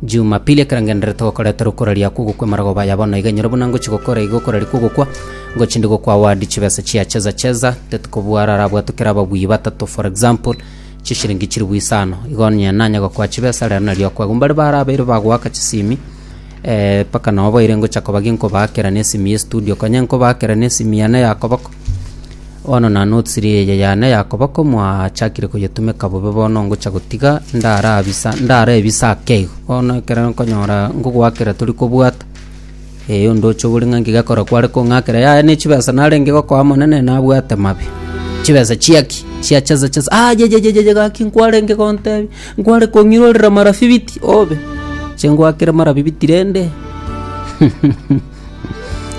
Jumapili ekerengenero togokoreta rukora ria kugwa kw'emarogoba aya bono iga nyoro buna ngochia gokora iga okora ria kogokwa ngochia ndi gokwa award chibesa chia cheza cheza tetikobua ara arabwatwe kera ababui batato for example chishiringi chiribu isano igo onye nanya gokwa chibesa rero nario akwa igo mbare bara abaire bagoaka chisimi eh, mpaka nabo baire ngocha kobagia nkobaa kera nesimi ya estudio konya nkobaa kera nesimi yane ya koboko Bono na notsiri eye yane ya koba komwachakire koyetumeka bobe bono ngocha gotiga ndarabisa ndarebisa ake igo. Bono ekero nkonyora ngogoakera tori kobwata, ee ondoche ogore ng'a ngegekora kware kong'akera yaya ne chibesa narenge gokoa monene nabwate mabe. Chibesa chiaki chia chesa chesa ayayayaya gaki nkwarenge gontebi nkware kong'irorera mara fifiti obe. Inche ngoakere mara fifiti rende.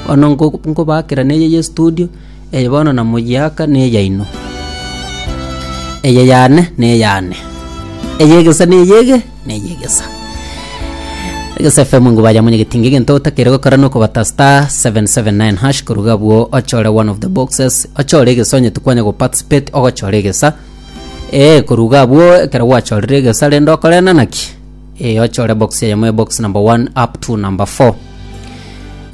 Bono ngo- ngobaakera neye y'estudio, eye bono namoyiaka neyaino. Eye yane neyane, eyegesa neyege neyegesa. Egesa FM ngobaye amo nyagete ng'a egento otakire gokora nokobata star seven seven nine hash koruga abwo ochore one of the boxes, ochore egesa onyete kwanya goparticipate ogochora egesa, eeh koruga abwo ekero gwachorire egesa rende okore na naki. Eyo chore box eyemo ya box number 1 up to number 4.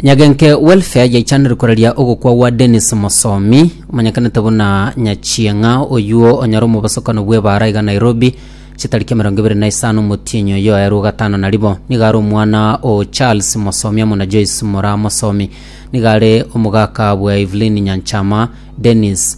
Nyagenke welfare yaichanire koreria ogokwa gwa Dennis Mosomi omanyekanete buna Nyachieng'a oyuo onyare omobosokano bw'ebaara iga Nairobi chitariki emerongo ebere na isano omotienyi oyo aerwe gatano na ribo nigo are omwana o Charles Mosomi amo na Joyce Mora Mosomi nigo are omogaka bwa Evelyn Nyanchama Dennis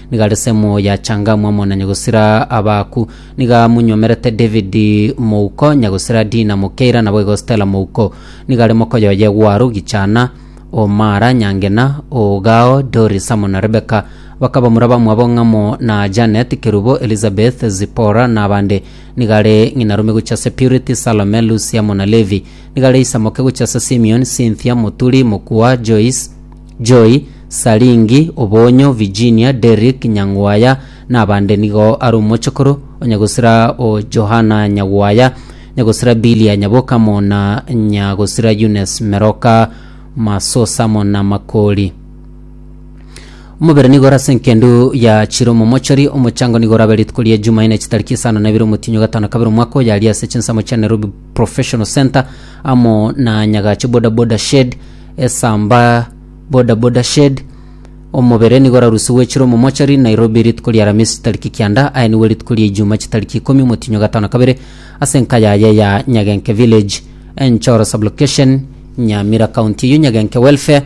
Nigo are semo ya Changamu amo na nyagosira Abaku. Nigo amunyomerete David mouko, nyagosira Dina Mokeira, naboigo Stella mouko. Nigo are mokoyo oye Gwaru, Gichana, o Mara, Nyangena, o Gao, Doris amo na Rebeka. Bakaba mura bamwabo ng'amo na Janet, Kerubo, Elizabeth, Zipora, na abande. Nigo are ng'inarume gochia ase Purity, Salome, Lucy amo na Levi. Nigo are isamoke gochia ase Simeon, Cynthia, Muturi, Mokua, Joyce, Joy, Saringi, Obonyo, Virginia, Derrick, Nyang'waya, na abande nigo are omochokoro onye gosira o Johana Nyagwaya, nye gosira Billy Anyaboka mo na nya gosira Eunice Meroka Masosa mo na Makori. Omobere nigo ore ase enkendu ya chire omomochori, omochango nigo orabe rituko ria Ejumaine chitariki isano na ibere omotinyo gatano na kabere omwaka oyo aria ase chinsemo chia Nairobi Professional Centre amo na Nyagache Boda Boda Shed, Esamba Boda Boda Shed. Omobere nigo orarusi gwechirwe momochari Nairobi rituko ria Aramisi chitariki kianda aye nigo rituko ria Ijuma chitariki ikomi omotinyo gatano kabere ase enka yaye ya Nyagenke Village Enchoro Sublocation Nyamira County eyio Nyagenke Welfare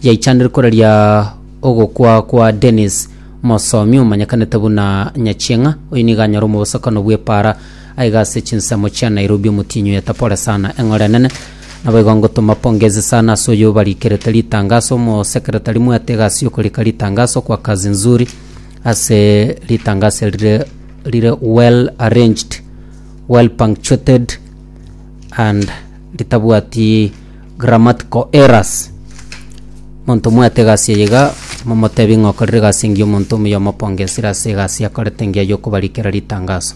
yaichanire koraria ogokwa kwa Dennis Mosomi omanyekanete buna Nyachieng'a oyio nigo anyare omobosokano bw'epara Aiga ase chinsemo chia Nairobi omotienyi oye tapore sana eng'ora enene. Naboigo ngotoma pongezi sana ase oyo obarikerete ritangaso omosekretari mwete egasi yokorika ritangaso kwa kazi nzuri ase ritangaso eri rire rire well arranged well punctuated and ritabwati grammatical errors monto mwete egasi eye iga momotebi ng'a okorire egasi engiya omonto omuya omopongesire ase egasi akorete engiya yokobarikera ritangaso.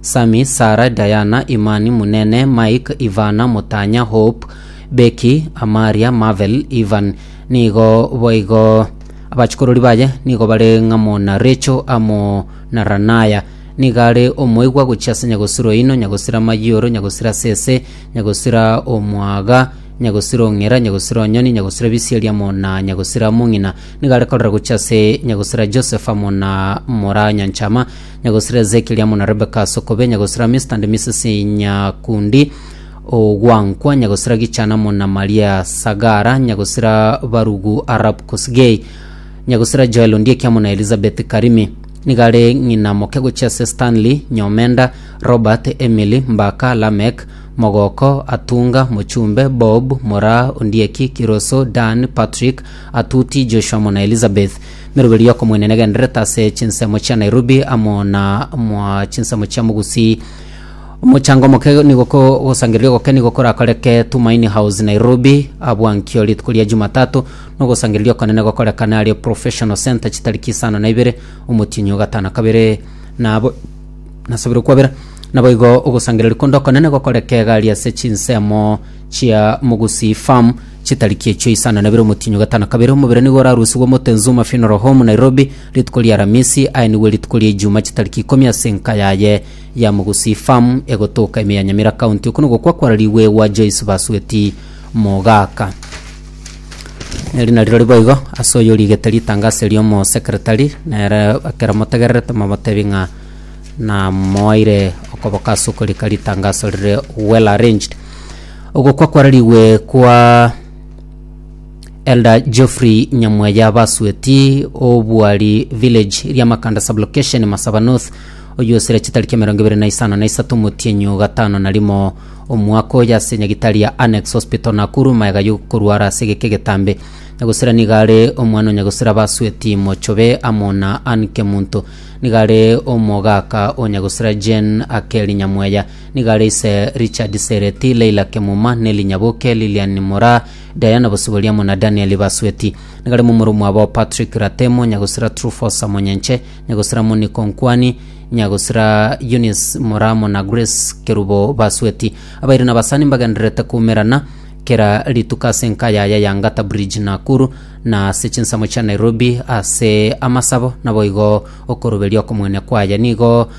Sami, Sara, Diana, Imani, Munene, Mike, Ivana, Mutanya, Hope, Becky, Amaria, Marvel, Ivan. Nigo boigo abachikorori baye nigo bare ng'amo na Recho amo na Ranaya. Niga are omoigwa gochia ase nyagosira oino, nyagosira amayioro, nyagosira sese, nyagosira omwaga, nyagosira ong'era, nyagosira onyoni, nyagosira bisieri amo na nyagosira mong'ina. Niga are korora gochia ase nyagosira Joseph amo na Moranyanchama. Nyagosira Ezekieli amo na Rebeka ase okobe, Nyagosira Mister and Mrs Nyakundi Ogwankwa, Nyagosira Gichana amo na Maria Sagara, Nyagosira Barugu Arap Kosgei, Nyagosira Joel Ondieki amo na Elizabeth Karimi. Nigo are ng'ina moke gochia ase Stanley, Nyomenda, Robert, Emily, Mbaka, Lameck, Mogoko, Atunga, Mochumbe, Bob, Moraa, Ondieki, Kiroso, Dan, Patrick, Atuti, Joshua amo na Elizabeth. Na eroberi y'okomoenena egendererete ase chinsemo chia Nairobi amo na mwa chinsemo chia Mugusi. Omochango omoke nigo ko- ogosangereria ogoke nigo korakoreke Tumaini House Nairobi abwankio rituko ria Jumatatu, na ogosangereria okonene gokorekane aria Professional Centre chitariki isano na ibere omotienyi o gatano kabere. Nabo nasabire kwabera. Naboigo ogosangereria konde okonene gokoreke iga aria ase chinsemo chia Mugusi Farm, Chitariki echio isano nabere omotienyi ogatano kabere omobere nigo orarusigwe omote Nzuma Funeral Home Nairobi rituko ria aramisi aye nigo erituko ria ejuma chitariki ikomi ase enka yaye ya Mugusii Farm egotoka ime ya Nyamira County oko nogokwa kwararigwe gwa Joyce Basueti Mogaka Neri nari rori boigo ase oyo origete ritangaso erio omo secretary nere ekero motegererete momotebi ng'a namoaire okoboka ase okorika ritangaso rire well arranged Ogokwa kwararigwe kwa Elder Geoffrey Nyamweya Basueti Obwari Village Riamakanda Sublocation Masaba North oyosire chitariki emerongo ebere na isano na isato omotienyi o gatano na rimo omwaka oyo ase nyagitari ya Annex Hospital Nakuru maega yokorwara ase egeke egetambe Nyagosira nigo are omwana o Nyagosira Basueti Mochobe amo na Ann Kemunto nigo are omogaka o Nyagosira Jane Akeri Nyamweya Nigo are ise Richard Sereti, Leila Kemuma, Nelly Nyaboke, Lilian Mora, Diana Bosiboriamo na Daniel Basweti. Nigo arimo omoro mwabo Patrick Ratemo, nyagosira Trufosa Monyenche, nyagosira Moniko Nkwani, nyagosira Eunice Moramo na Grace Kerubo Basweti. Abairi na abasani mbagendererete koumerana kera rituko ase enka yaya ya Ngata Bridge Nakuru na ase chinsemo chia Nairobi ase amasabo naboigo okoroberia okomoenia kwaye. Nigo